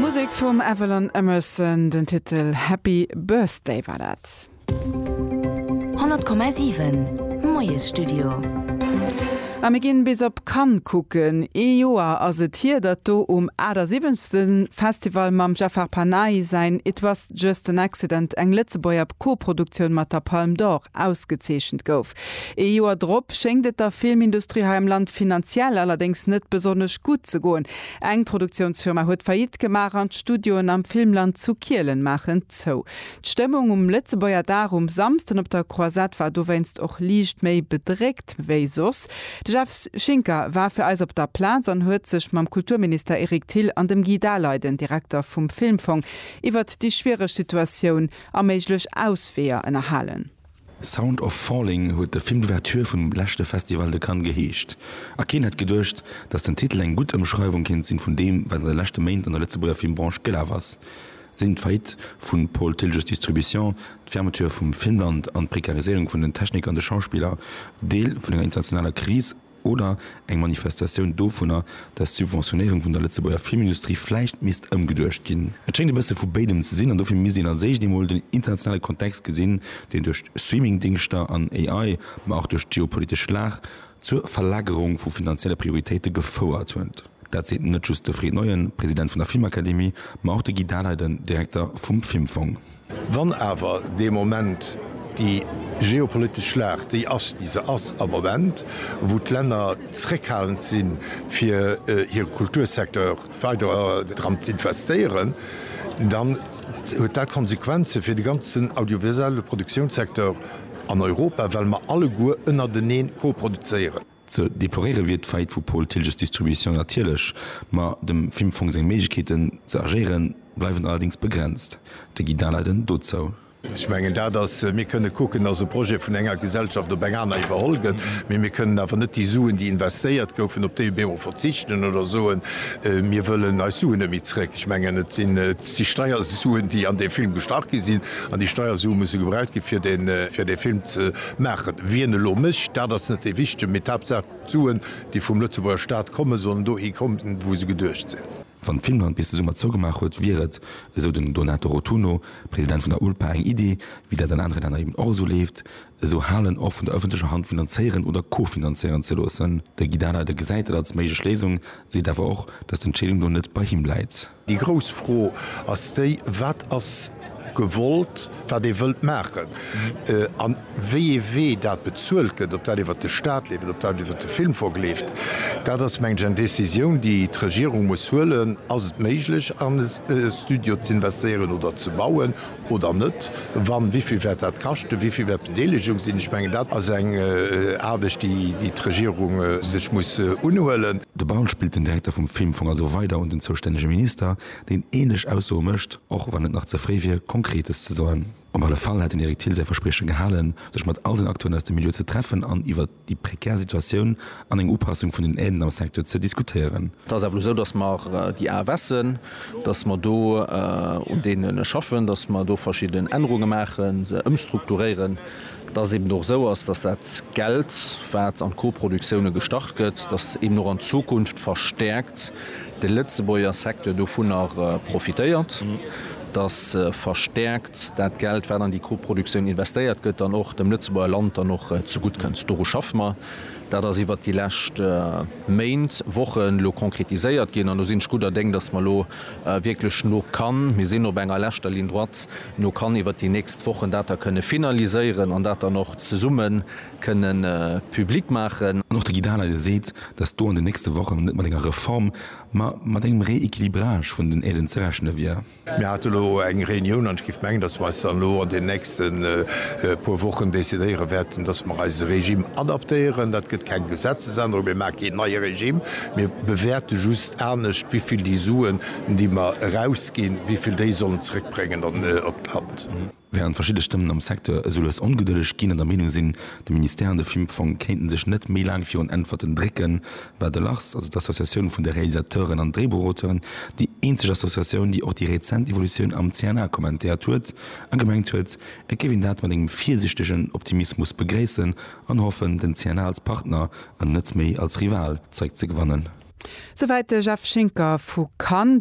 Musek vum Avalon Emerson, den Titel Happy Birthday war dat. 100,7 Moiesstudio. A mir ginn bis op Cannes kucken. Ee Joer ass et hier, datt do um 78. Festival mam Jafar Panahi säin It Was Just An Accident eng Lëtzebuerger Koproduktioun mat der Palme d'Or ausgezeechent gouf. Ee Joer drop schéngt et der Filmindustrie hei am Land finanziell allerdéngs net besonnesch gutt ze goen. Eng Produktiounsfirma huet Faillite gemaach an d'Studioen am Filmland zu Kielen maachen zou. D'Stëmmung um Lëtzebuerger Dag um Samsden op der Croisette war dowéinst och liicht méi bedréckt wéi soss. De Jeff Schinker war fir eis op der Plaz an huet sech mam Kulturminister Eric Thill an dem Guy Daleiden, Direkter vum Filmfong, iwwert déi schwiereg Situatioun a méiglech Ausweeër ënnerhalen. Sound of Falling huet de Film d'Ouverture vum leschte Festival de Cannes geheescht. A keen hätt geduecht, datt den Titel eng gutt Ëmschreiwung kéint sinn vun deem, wat an de leschte Méint an der Lëtzebuerger Filmbranche gelaf ass, sinn d'Faillite vu Paul Tilges Distribution, d'Fermeture vum Filmland an d'Prekariséierung vun den Techniker an de Schauspiller Deel vun enger internationaler Kris? Oder eng Manifestatioun dovunner, datt d'Subventionéierung vun der Lëtzebuerger Filmindustrie vläicht misst ëmgeduecht ginn. Et schéngt e bësse vu béidem ze sinn an dofir misst een als éischt eemol den internationale Kontext gesinn, deen duerch Streamingdingschter an AI, ma och duerch d'geopolitesch Lag zur Verlagerung vu finanzielle Prioritéite gefouert huet. Dat seet net just de Fred Neuen, President vun der Filmakademie, ma och de Guy Dahleiden, Direkter vum Filmfong. Wann awer dee Moment déi geopolitesch Schlacht déi ass, déi se ass am Moment, wou d'Länner zréckhalend si fir hire Kultursecteur weider dran z'investéieren, dann huet dat Konsequenze fir de ganzen audiovisuelle Produktiounssecteur an Europa, well mer alleguer ënnerteneen koproduzéieren. Ze deploréiere wier d'Faillite vu Paul Thilges Distribution natierlech, ma dem Filmfong seng Méiglechkeeten ze agéieren, bleiwen allerdéngs begrenzt. De Guy Daleiden dozou. Ech mengen dat ass, mir kënne kucken, dass e Projet vun enger Gesellschaft op eng aner iwwerholl gëtt, mee mir kënnen awer net déi Suen, déi investéiert goufen, op déi emol verzichten oder soen, mir wëllen eis Suen net méi zréck. Ech mengen, et sinn si Steiersuen, déi an dee Film gestach gi sinn, an déi Steiersue musse gebraucht gi fir dee Film ze Maachen. Wien elo mécht, dat ass net dee Wichtegen, mee d'Haaptsaach d'Suen, déi vum Lëtzebuerger Staat kommen, sollen dohi kommen, wou se geduecht sinn. Wann Finnland bis de Summer zougemaach huet, wier et, esou den Donato Rotunno, President vun der ULPA, eng Iddi, wéi dat an anere Länner eben och esou leeft, esou Halen och vun der ëffentlecher Hand finanzéieren oder co-finanzéieren ze loossen. De Guy Dahler, dee gesäit dat als méiglech Léisung, seet awer och, datt d'Entscheedung do net bei him läit. Déi grouss Fro ass déi, Wat ass gewollt, wat ee wëllt maachen a wéi ee Wee dat bezuelt gëtt, ob dat iwwert de Staat leeft, ob dat iwwert de Filmfong leeft? Dat ass, mengen ech, eng Décisioun, déi d'Regierung muss huelen. Ass et méiglech, an e Studio z'investéieren oder ze bauen? oder net, wann, wéi vill wäert dat kaschten, wéi vill wäert d'Bedeelegung sinn? Ech mengen, dat ass eng Aarbecht, déi d'Regierung sech muss unhuelen. De Baul spillt den Direkter vum Filmfong also weider un den zoustännege Minister, deen änlech Aussoe mécht, och wann et nach ze fréi wier, Konkretes ze soen. Op alle Fall hat den Eric Thill säi Versprieche gehalen, sech mat all den Acteuren aus dem Milieu ze treffen an iwwer. déi prekär Situatioun an eng Upassung vun den Aiden am Secteur ze diskutéieren. Et ass awer elo esou, datt mer déi AFSen, datt mer do un deene schaffen, datt mer do verschidden Ännerunge maachen, se ëmstrukturéieren, datt eben och esou ass, datt dat Geld, wat an d'Coproductioune gestach gëtt, datt eben och an Zukunft verstäerkt de Lëtzebuerger Secteur dovunner profitéiert. dass verstärkt dat Geld, wat an déi Koproduktioun investéiert gëtt, dann och dem Lëtzebuerger Land dann och zegutt kënnt. Doru schaffe mer. Dat ass iwwert déi lescht Méint, Wochen elo konkretiséiert ginn an do sinn ech gudder Déng, dass mer elo wierklech no kann, mir sinn op enger leschter Ligne droite, no kann iwwert déi nächst Wochen dat da kënne finaliséieren an dat dann och zesumme kënnen public maachen. An och de Guy Dahler, dee seet, dass do an den nächste Wochen net mat enger Reform Ma mat engem Rééquilibrage vun den Aiden ze rechne wier. Mir hate lo eng Reunioun an ech géif mengen, datt mer eis dann elo an deenen nächste puer Wochen decidéiere wäerten, datt mer eise Regime adaptéieren. Dat gëtt keng Gesetzesännerung. Mir maache keen neie Regime. Mir bewäerte just anescht, wéi vill déi Suen, déi mer erausginn, wéi vill déi sollen zeréckbréngen op d'Land. Während verschidde Stëmmen am Secteur esou lues ongedëlleg ginn an der Meenung sinn, de Ministère an de Filmfong kéinten sech net méi laang virun Äntwerten drécken, war de Lars, also d'Associatioun vun de Realisateuren an Dréibuchauteuren, déi eenzeg Associatioun, déi och déi rezent Evolutioun am CNA kommentéiert huet a gemengt huet, et géif een dat mat engem virsichtegen Optimismus begréissen an hoffen, den CNA als Partner an net méi als Rival zeréckzegewannen. Souwäit de Jeff Schinker vu Cannes.